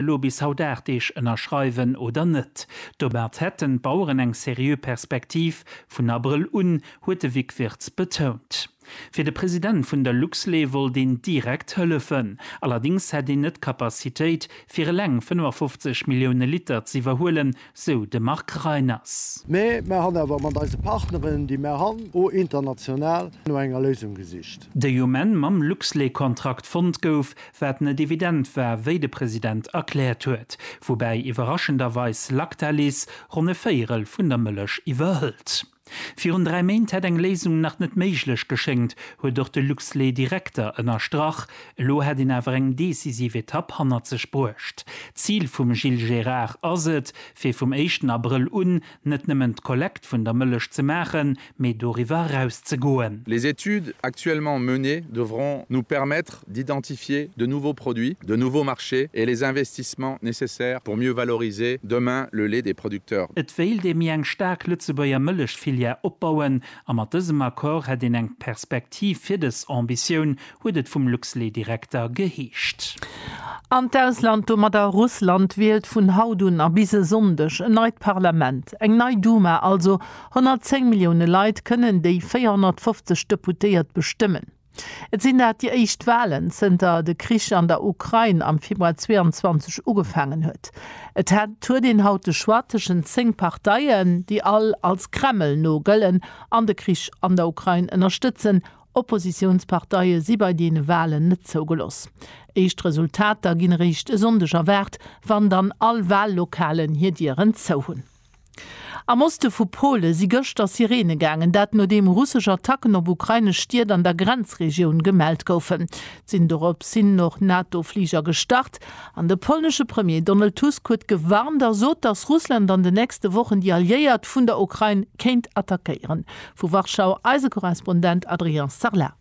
elo bis haut 8 Deeg ënnerschreiwen oder net. Domat hätten d'Baueren eng seriö Perspektiv, vun Abrëll un, huet de Vic Wirtz betount. Fir de President vun der Luxlait wollt een direkt hëllefen. Allerdéngs hätt een net d'Capacitéit, fir eleng 55 Millioune Liter z'iwwerhuelen, sou de Marc Reiners. Mee mer han awer mat eise Partneren, déi mer han, o international no enger Léisung gesicht. Déi um Enn mam Luxlait-Kontrakt fonnt gouf, wat net evident war, wéi de President erkläert huet. Woubäi iwwerraschenderweis Lactalis ronn e Véierel vun der Mëllech iwwerhëlt. Virun dräi Méint hätt eng Léisung nach net méiglech geschéngt, huet och de Luxlait-Direkter ënnerstrach. Elo hätt een awer eng decisiv Etapp hannert sech bruecht. D'Zil vum Gilles Gérard ass et, fir vum éischten Abrëll un net nëmmen d'Kollekt vun der Mëllech ze maachen, mee doriwwer eraus ze goen. Les études actuellement menées devront nous permettre d'identifier de nouveaux produits, de nouveaux marchés et les investissements nécessaires pour mieux valoriser demain le lait des producteurs. Et wéilt ee méi eng staark Lëtzebuerger Mëllechfilière opbauen a mat dësem Accord hätt een eng Perspektiv fir dës Ambitioun, huet et vum Luxlait-Direkter geheescht. An d'Ausland, domadder Russland, wielt vun haut un a bis e Sonndeg en neit Parlament, eng nei Duma also. 110 Millioune Leit kënnen déi 450 Deputéiert bestëmmen. Et sinn dat déi éischt Walen zënter de Krich an der Ukrain am Februar 22 ugefaangen huet. Et huet een haut de Choix tëschent zéng Parteien, déi all als Kreml no gëllen an de Krich an der Ukrain ënnerstëtzen. Oppositiounsparteie si bei deene Walen net zougeloss. Éischt Resultater ginn eréischt e Sonndeg erwaart, wann dann all Wallokalen hir Dieren zou hunn. Am Oste vu Pole si gëschter Sirene gaangen, dat nodeem russesch Attacken op ukrainesch Stied an der Grenzregioun gemellt goufen. Sinn dorop sinn och NATO-Fliger gestart. An de polnesche Premier Donald Tusk huet gewarnt a sot, datt Russland an de nächste Wochen déi Alliéiert vun der Ukrain kéint attackéieren. Vu Warschau eise Korrespondent Adrien Sarlat.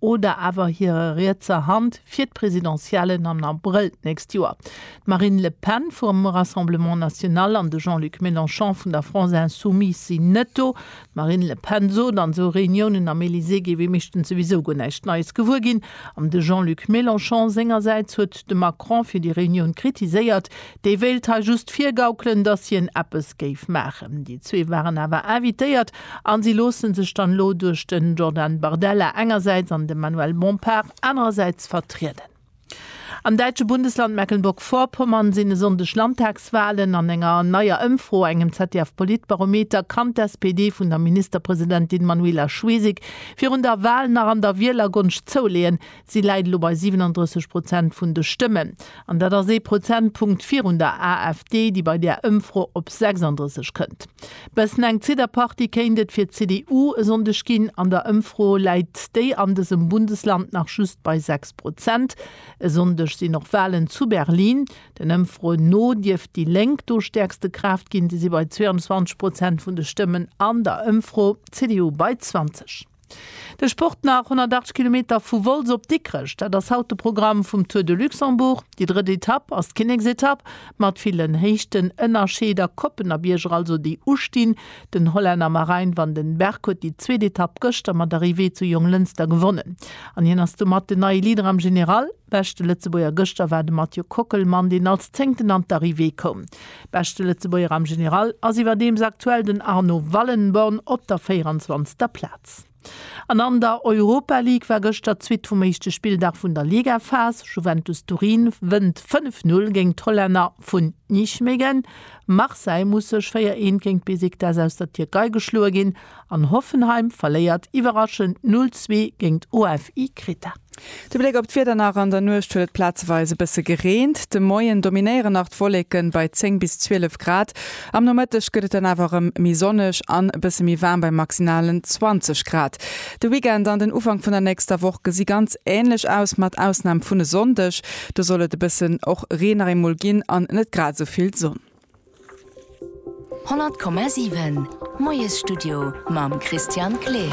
oder awer hirer rietser Hand fir d'Presidentiellen am Abrëll d'nächst Joer. D'Marine Le Pen vum Rassemblement National an de Jean-Luc Mélenchon vun der France Insoumise sinn net do. D'Marine Le Pen sot, an esou Reuniounen am Elysée géif ee meeschtens souwisou guer näischt Neies gewuer ginn. An de Jean-Luc Mélenchon sengersäits huet de Macron fir déi Reunioun kritiséiert, Dee wéilt hei just virgaukelen, datt hien eppes géif maachen. Déi zwee waren awer invitéiert a si loosse sech dann elo duerch de Jordan Bardella engersäits an de Manuel Bompard anerersäits vertrieden. Am däitsche Bundesland Mecklenburg-Vorpommern sinn e Sonndeg Landtagswalen. An enger neier Ëmfro, engem ZDF-Politbarometer, kann d'SPD vun der Ministerpresidentin Manuela Schwesig virun der Wal nach an der Wielergonscht zouleeën, Si läit elo bei 37 Prozent vun de Stëmmen, an dat ass ee Prozentpunkt virun der AfD, déi bei där Ëmfro op 36 kënnt. Bëssen eng Zitterpartie kéint et fir d'CDU e Sonndeg ginn. An der Ëmfro läit déi an dësem Bundesland nach just bei 6 Prozent. E Sonndeg sinn och Walen zu Berlin. Den Ëmfroen no dierft déi Lénk do stäerkste Kraaft ginn. Si si bei 22 Prozent vun de Stëmmen an der Ëmfro, d'CDU bei 20. De Sport nach 108 Kilometer vu Wolz op Dikrech, dat ass haut de Programm vum Tour de Luxembourg. Déi drëtt Etapp ass d'Kinneksetapp, mat villen Héichtenënnerscheed a Koppen a Bierger also, déi ustinn. Den Hollänner Marijn van den Berg huet déi zweet Etapp gëschter mat Arrivée zu Jonglënster gewonnen an hien ass domat den neie Leader am General. Beschte Lëtzebuerger gëschter war de Mathieu Kockelmann, deen als Zéngten an d'Arrivée koum. Beschte Lëtzebuerger am General ass iwwerdeems aktuell den Arnaud Wallenborn op der 24. Plaz. An an der Europa League war gëschter d'Suite vum éischte Spilldag vun der Ligaphas. Juventus Turin wënnt 5, 0 géint d'Hollänner vun Nijmegen. Marseille muss sech 4, 1 géint Besiktas aus der Tierkei geschloe ginn. An Hoffenheim verléiert iwwerraschend 0, 2 géingt OFI Kreta. De Bléck op d'Wieder nach, An der Nuecht huet et plazeweis e bësse gereent. De Moien dominéieren nach d'Wolleken bei 10 bis 12 Grad. Am Nomëtteg gëtt et dann awer erëm méi sonneg an e bësse méi waarm bei maximalen 20 Grad. De Weekend an den Ufank vun der nächster Woch gesi ganz änlech aus, mat Ausnam vun e Sonndeg. Do soll et e bëssen och Reen nach eemol ginn an net grad esou vill Sonn. 100,7 Moiesstudio mam Christian Kleer.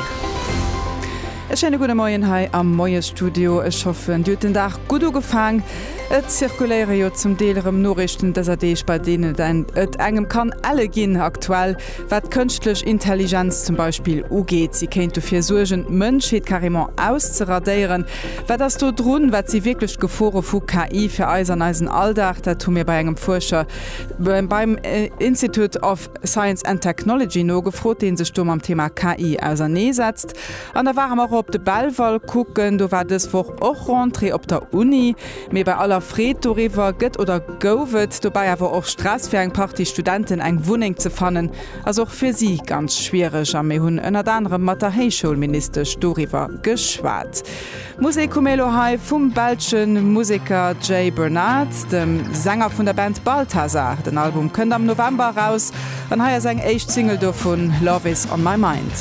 E schéine gudde Moien hei am Moiesstudio. Ech hoffen, Dir hutt den Dag gutt ugefaang. Et zirkuléiere jo zum Deel erëm Noriichten dëser Deeg, bei deenen et engem kann elle ginn aktuell, wat d'kënschtlech Intelligenz zum Beispill ugeet. Si kéint dofir suergen, d'Mënschheet carrément auszeradéieren. Wat ass do drun? Wat si wierklech d'Gefore vu KI fir eis an eisen Alldag? Dat hu mir bei engem Fuerscher beim Institute of Science and Technology nogefrot, dee sech do mam Thema KI ausernee setzt. An da ware mer och op de Belval kucken. Do war dës Woch och Rentrée op der Uni. Mee bei aller Freed doriwwer gëtt oder gouf et dobäi awer och Stress, fir eng Partie Studenten eng Wunneng ze fannen. ass och fir si ganz schwiereg a mir hunn ënnert anerem mat der Héichschoulministesch doriwwer geschwat. D'Musek hu mir elo hei vum belsche Museker Jay Bernard, dem Sänger vun der Band Balthazar. Den Album kënnt am November eraus an hei ass eng éischt Single dovun, Love is on my mind.